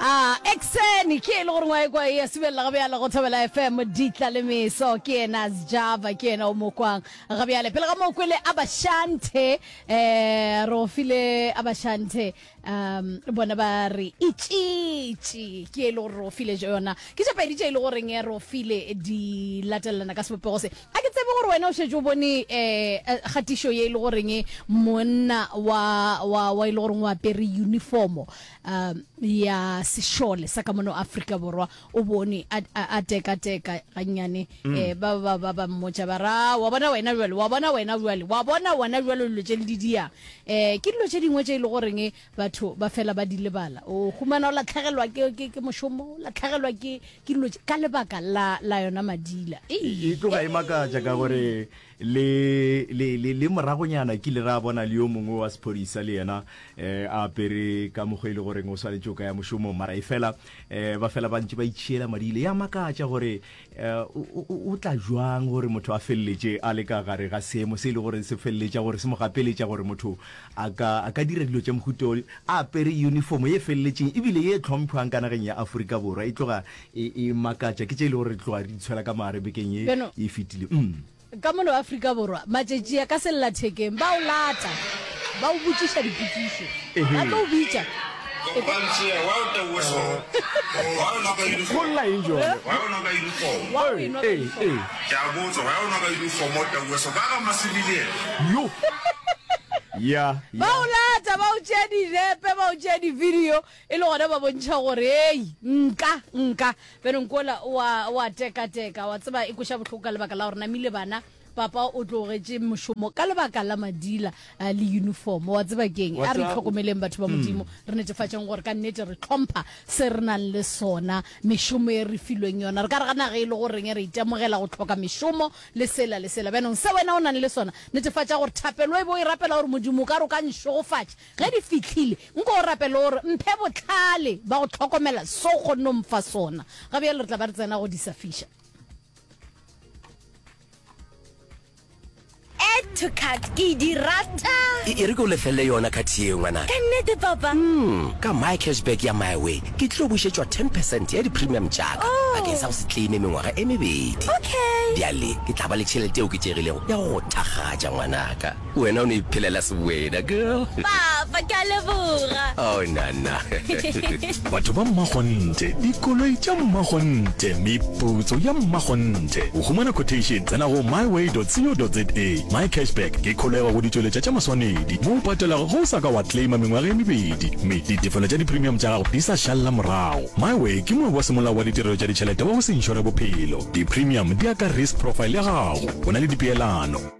Ah, Exeni, ke ele gore ngwaekwa e ya subelela ga bjale go Thobela FM, Ditla le Meso, ke yena Sjava, ke yena o mo kwang ga bjale. Pele ga moo kwele Abashante, eh, re o file Abashante, um, bona ba re itšitši, ke ele gore re o file jo yona. Ke tša pedi tše ele goreng eh, re o file di latelelana ka sebopego se. A ke tsebe gore wena o šetše o bone eh, eh, kgatišo ye ele goreng eh, monna wa, wa, wa ele goreng o apere uniformo, um ya sešole sa ka mono afrika borwa o bone a, a, a teka teka gannyane mm. eh, ba ba ba ba mmotša ba ra wa bona wena jwale wa bona wena jwale wa bona wena jwale dilo tše le di diyang um ke dilo tše dingwe tše e le goreng e batho ba fela ba di lebala o humana o latlhegelwa ke, ke, ke mošomo o latlhegelwa ke, ke dilo ka lebaka la, la yona madila e tloga e makatša ka gore Le, le, le, le moragonyana ke ile ra bona le yo mongwe wa sephodisa le yena um a apere ka mokgwa e le goreng o swanetse o ka ya mošomong mara e fela um ba fela ba ntse ba itšhiela madile ya makatša gore um o tla jwang gore motho a feleletše a le ka gare ga seemo se e le gore se feleletša gore se mo gapeletša gore motho a ka a ka dira dilo tša mohuto a apere uniformo ye feleletšeng ebile ye tlhomphwang ka nageng ya aforika borwa e tloga E e makatša ke tše e lego gore re tloga re di tshwela ka maare bekeng ye Bjano, e fetile. Umm. ka mono Afrika Borwa, matšatši a ka sellathekeng ba o lata, ba o botšiša dipotšišo, ba tlo o bitša. Golla eng bjale? Wa e nwa ka uniform. Yo! Ya, Ba ya. o lata, ba o tšea dinepe, ba o tšea di-video. E le gona ba bontšha gore, Hei, nka, nka. Bjale nko ola o a, o a tekateka. Wa tseba, e kweša bohloko ka lebaka la gore namile bana, papa o tlogetše mošomo ka lebaka la madila uh, le uniform. Wa tseba ke eng? A re itlhokomeleng batho ba mm. Modimo, re netefatšeng gore ka nnete re tlhompha se re nang le sona, mešomo e re filweng yona. Re ka re ga naga e le goreng re itemogela go tlhoka mešomo le sela le sela. Bjanong se wena o nang le sona, netefatša gore thapelo e bo e rapela gore Modimo ka re o ka nšogofatša, Ge di fihlile, nko o rapele o re, Mphe bohlale ba go hlokomela so o kgonne go mpha sona. Ga bjalo re tla ba re tsena go di safiša. Add to cart, Ke di rata! E, e re ke go lefelele yona cart yeo, ngwanaka. Ka nnete, Papa? Umm, ka MyCashback ya MyWay, ke tlilo bušetšwa ten percent ya di-premium tša-ka Oh! bakeng sa go se claime mengwaga e mebedi. Okay! Bjale ke tla ba le tšhelete e oketšegilego ya go go thakgatša, ngwanaka. Wena o no iphelela sebwena, girl. Papa, ke a leboga. Oh, nana. Batho ba mmakgonthe, dikoloi tša mmakgonthe, meputso ya mmakgonthe. Go humana quotation, tsena go myway.co.za. Mycashback ke kholego go ditšweletša tša maswanedi mo o patelago ge o sa ka wa claima mengwaga e mebedi mme ditefelo tša dipremium tša gago di sa šalela morago. Myway ke moabi wa semolao wa ditirelo tša ditšhelete wa go se inšore bophelo. Dipremium di ya ka risk profile ya gago. O na le dipeelano.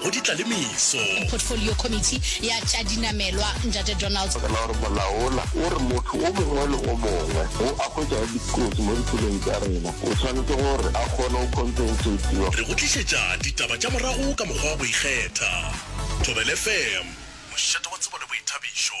go di tla le meso. Portfolio Committee ya tša Dinamelwa, Ntate Donald. Re na gore molaola o re motho o mongwe le o mongwe wo a hwetšago dikotsi mo ditseleng tša rena o swanetše gore a kgone go compensatiwa. Re go tlišetša ditaba tša morago ka mokgwa wa go ikgetha. Thobel FM, mošate wa tsebo le boithabišo.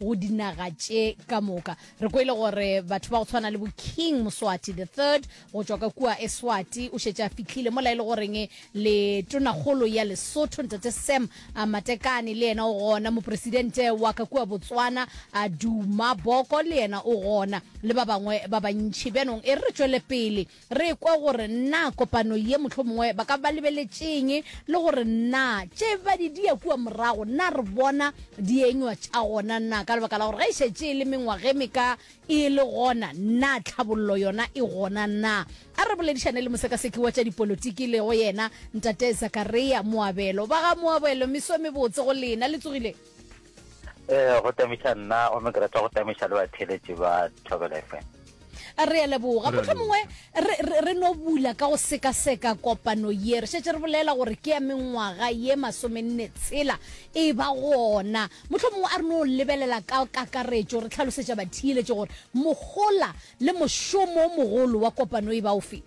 go dinaga tše ka moka re kwele gore batho ba go tshwana le bo king moswati the third go tšwa ka kua eswati o šetše a fitlhile mola e le goreng le tonakgolo ya lesotho ntate sam a matekane le yena o gona mopresidente wa ka kua botswana a duma boko le yena o gona le ba bangwe ba bantšhi bjanong e re re tšwele pele Re kwe gore na kopano ye mohlomongwe ba ka ba lebeletše'ng le gore na tše ba di dia kua morago na re bona dienywa tša gona na, ka lebaka la gore ge e šetše e le mengwaga e meka e le gona, na tlhabollo yona e gona na. A re boledišane le mosekaseki wa tša dipolotiki e lego yena Ntate Zakaria Moabelo. Ba ga Moabelo, meso e mebotse go lena. Le tsogile? um go tamiša nna ome ke rata go tamiša le batheletši ba thobela fm re a leboga motlho mongwe re no bula ka go sekaseka kopano ye re šetse re bolela gore ke ya mengwaga ye masomenne tshela e ba gona motlho mongwe a re no lebelela ka kakaretšo re tlhalosetša bathieletse gore mogola le mošomo mogolo wa kopano e ba o feng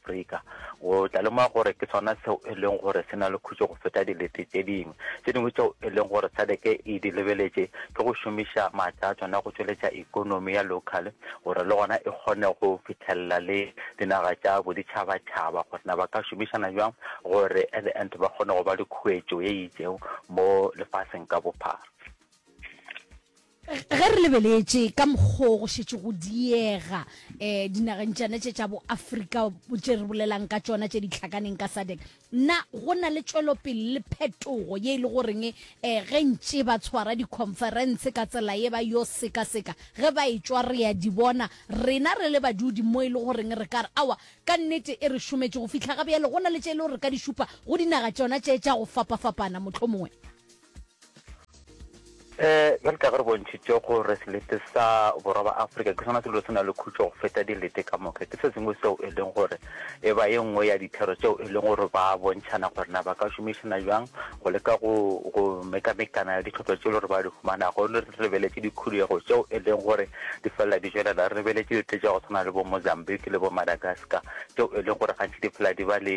Afrika, o tla lemoga gore ke sona seo e leng gore se na le khutšo go feta dilete tše dingwe tše dingwe tšeo e leng gore sadc e di lebeletše, ke go šomiša maatla a tsona go tšweletša ekonomi ya local gore le gona e kgone go fitlhelela le dinaga tša boditšhabatšhaba gore na ba ka šomišana bjang gore at the end ba kgone go ba le khuetšo ye itseng mo lefaseng ka bophara. Ge re lebeletše ka mokgo go šetše go diega um dinageng tšane tše tša boafrika tše re bolelang ka tšona tše di tlhakaneng ka sadec na go na le tšwelopele le phetogo ye e le goreng um ge ntše ba tshwara dikhonferense ka tsela ye ba yo sekaseka ge ba e tšwa re a di bona rena re le badudi mo e le goreng re ka re awa ka nnete e re šometše go fihla ga bjale go na le tše e le gore re ka di šupa go dinaga tšona tše tša go fapafapana mohlomongwe Eh, bjale ka ge re bontšhitše gore selete sa borwa ba Afrika ke sona selo se na le khutšo go feta dilete ka moka, ke se sengwe seo e leng gore e ba ye nngwe ya dithero tšeo e leng gore ba bontšhana gore na ba ka šomišana jang go leka go go mekamekana ditlhotlo tše e le gore ba di humanago le re lebeletše dikhuduego tšeo e leng gore di felela di jwelela re lebeletše dite tša go tshwana le bo Mozambique le bo Madagascar tšeo e leng gore gantši di phela di ba le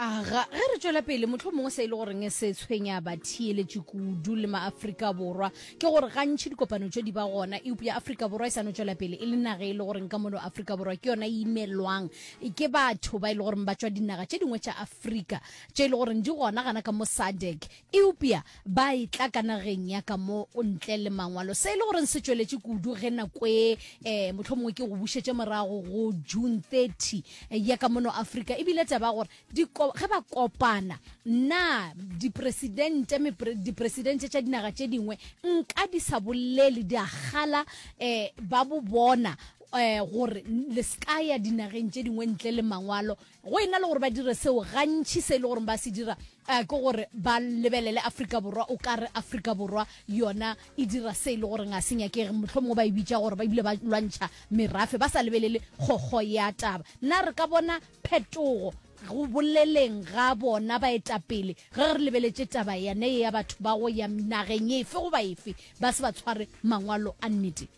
aga ge re tšwela pele motlho mongwe se e le goreng se tshwenya batheeletši kudu le maaforika borwa ke gore gantši dikopano tšo di ba gona eupo ya aforika borwa e sa no tšwela pele e le naga e le goreng ka mono aforika borwa ke yona e imelwang ke batho ba e le goreng ba tšwa dinaga tše dingwe tša aforika tše e le goreng di gona gana ka mo sadec Eupja ba etla ka nageng ya ka mo ntle le mangwalo, se e le goreng se tšweletše kudu ge nako e, e mohlomongwe ke go bušetše morago go June 30 ya ka mono Afrika, e bile taba ya gore di ko, ge ba kopana, na dipresidente, mepre, dipresidente tša dinaga tše dingwe nka di sa bolele, di a kgala e ba bo bona e gore le se ka ya dinageng tše dingwe ntle le mangwalo. Go e na le gore ba dire seo, gantši se e le gore ba se dira eh, ke gore ba lebelele Afrika Borwa, o ka re Afrika Borwa yona e dira se e le gore ga se nyakege, motlho mongwe ba e bitša gore ba bile ba lwantšha merafe, ba sa lebelele kgokgo ya taba. Na re ka bona phetogo go boleleng ga bona baetapele ge re lebeletše taba yane ya batho ba go ya nageng efe goba efe ba se ba tshware mangwalo a nnete?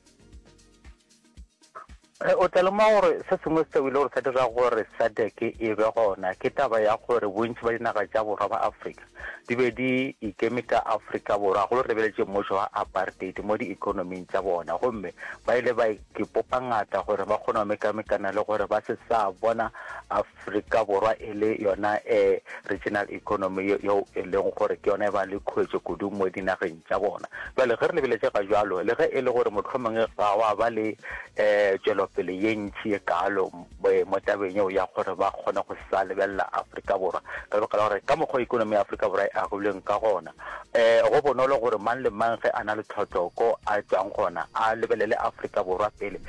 Re o tla lemoga gore se sengwe seo e le gore sa dira gore SADC e be gona ke taba ya gore bontši ba dinaga tša borwa ba Afrika di be di ikeme ka Afrika Borwa go lebeletše mmušo wa apartheid mo diikonoming tša bona gomme ba ile ba ipopa ngata gore ba kgone go mekamekana le gore ba se sa bona Afrika Afrika Borwa e le yona e regional economy yeo e lego gore ke yona e ba le khuetšo kudu mo dinageng tša bona. Bjale ge re lebeletše ga bjalo, le ge e le gore mohlomong ga wa ba le tšwelopele ye ntši ye kaalo mo tabeng yeo ya gore ba kgone go sa lebelela Afrika Borwa ka lebaka la gore ka mokgwa economy ya Afrika Borwa e agilweng ka gona, go bonolo gore mang le mang ge a na le tlhotloko a tšwang gona a lebelele Afrika Borwa pele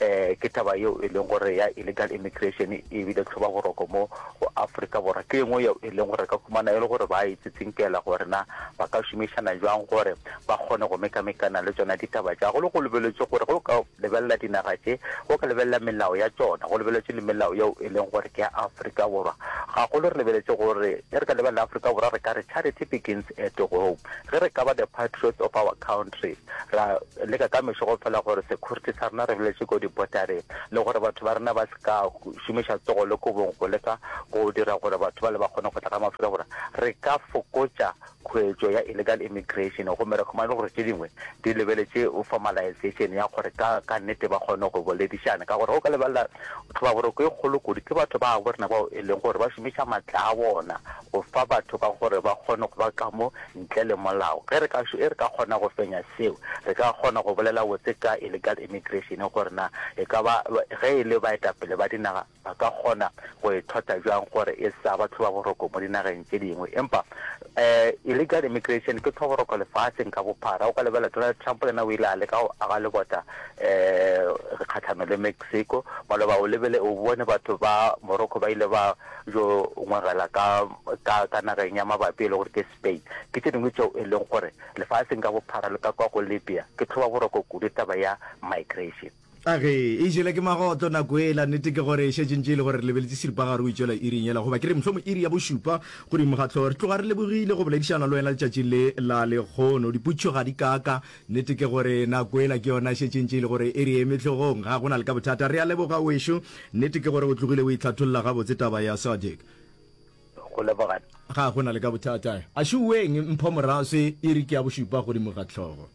Ee, ke taba yeo e leng gore ya illegal immigration e ebile tlhoba boroko mo go Afrika Borwa ke engwe yeo e leng gore re ka humana e le gore ba e tsitsinkela gore na ba ka šomišana jwang gore ba kgone go mekamekana le tsona ditaba tša go le go lebeletše gore go ka lebelela dinaga tše go ka lebelela melao ya tsona go lebeletše le melao yeo e leng gore ke ya Afrika Borwa gagolo re lebeletše gore ge re ka lebelela Afrika Borwa re ka re charity begins at home ge re ka ba the patriots of our country factory ra leka ka mešo go fela gore security sa rena re boletše ko dipotare le gore batho ba rena ba se ka šomiša tsogo le kobong go leka go dira gore batho ba le ba kgone go tla ka mafura gore re ka fokotša khwetšo ya illegal immigration gomme re khumane gore tše dingwe di lebeletše formalization ya gore ka ka nnete ba kgone go boledišana ka gore go ka lebelela tlhobaboroko e kgolo kudu ke batho ba bo rena bao e leng gore ba šomiša matla a bona go fa batho ka gore ba kgone go ba kamo ntle le molao. Ge re ka e re ka kgona go fenya seo, re ka kgona go bolela botse ka illegal immigration gore na e ka ba ge e le baetapele ba dinaga ba ka kgona go e thota bjang gore e sa ba tlhobaboroko mo dinageng tše dingwe. Empa um illegal immigration ke tlhoboroko lefaseng ka bophara. O ka lebelela Donald Trump le yena o ile a leka go aga lebota um kgahlano le Mexico. Maloba o lebele o bone batho ba Morocco ba ile ba yo ngwagela ka, ka, ka nageng ya mabapi e le gore ke Spain, ke tše dingwe tšeo e leng gore lefaseng ka bophara le ka kwa go Libya ke tlhoba boroko kudu taba ya migration. A ge e jele ke magotlo nako yela, nnete ke gore e šetše ntše e le gore re lebeletše seripagare o itšwela iring yela, goba ke re mohlomong iri ya bošupa godimo ga hlogo. Re tloga re lebogile go boledišana le wena letšatšing le la lekgono. Diputšo ga di kaaka Nnete ke gore nako ela ke yona e šetše e ntše e le gore e re eme hlogong. Ga go na le ka bothata. Re a leboga, wešu. Nnete ke gore o tlogile o itlhatholla gabotse taba ya Sadiq. Go leboga. Ga go na le ka bothata. A šuweng mpho moraswe, iri ke ya bošupa godimo ga hlogo.